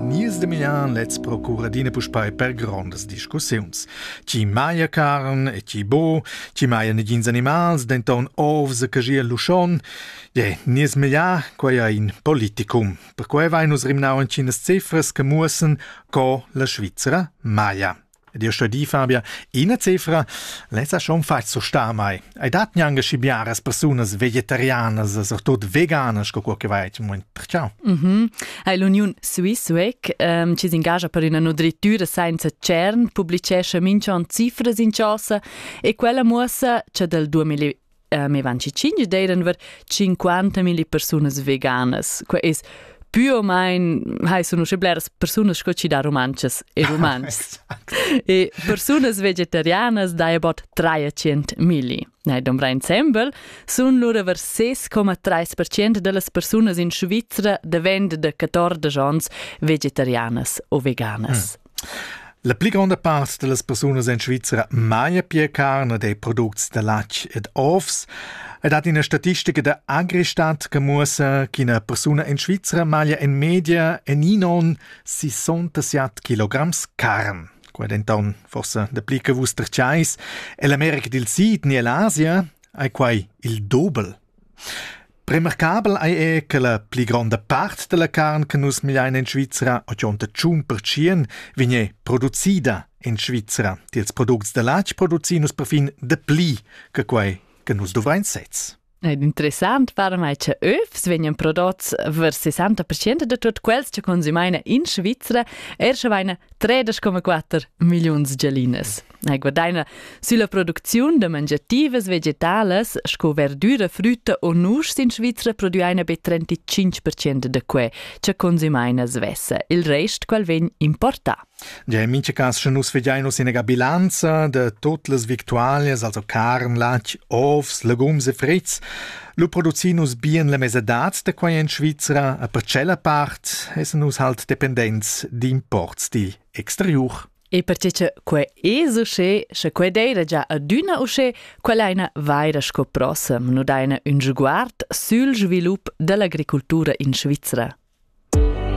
Nies Demian lets procura adina puspei per grondas discussiuns. Ti maia carn e ti bo, ti maia negins animals, denton ovs che gia luschon. Je, nies meglier, quei ei in politicum. Perquei vein nus rimnau entginas cifras che muossen co la Svizzera maia. Dir sto di, Fabia, ina cifra lessa schon far so sta mai. Hai dat gnanche schi biaras persunas vegetarianas, surtut veganas, co che vai in moment perciò. Mhm. Ha l'Uniun Swissweg, ähm, ci s'ingagia per una nutrittura senza CERN, publicesce mincha on cifras in chosa e quella muossa cha dal 2000 uh, me van ci cinge deiden ver 50.000 persunas veganas. Qua es più o meno hai sono sche bleras persone sco ci da romances e romans. e persone vegetarianas da about 300.000. Nei dombra insembel sun lura ver 6,3% dellas persunas in Svizzera davent de 14 ans vegetarianas o veganas. Mm. La pli gronda part da las persunas en Svizra maja pia carn ed è products da latg ed ovs. I dat ina statistica da Agristadt che muossa ch'ina persuna en Svizra maglia en media eninon 67 kilograms carn. Quai denton forsa dapli che vus terciais. Ell'America dil Sid ni ell'Asia ei quai il dobel. Remarcabel ei era che la pli gronda part dalla carn che nus milein en Svizra o giunta tschun pertschien vegnir producida en Svizra. Tiels products da latg producin nus perfin dapli che quei che nus dovrein sez. Ed interessant para mai che övs vegnan prodots vers 60% de tot quels che consumeina in Svizra, er sche veina 3,4 milliuns gelines. Ei guadaina sülla producziun da mangiativas vegetalas sco verdüra, frütta o nuschs in Svizra prodüaina be 35% da que cha consumaina svessa. Il rest qual vegn importà. Ja, in mincha cas, sche nus vegiain nus ina bilanza de tot las victualias, also carn, latg, ovs, legums e frits, lu producin nus bien la mesadad de quai in Svizra, a per tschella part essen nus halt dependents d'imports digl exteriur. E perche cha quai es uschè, sche quai d'eira già adüna uschè, quell'aina vaira sco prossa nu daina ün sguard sül svilup da l'agricultura in Svizra.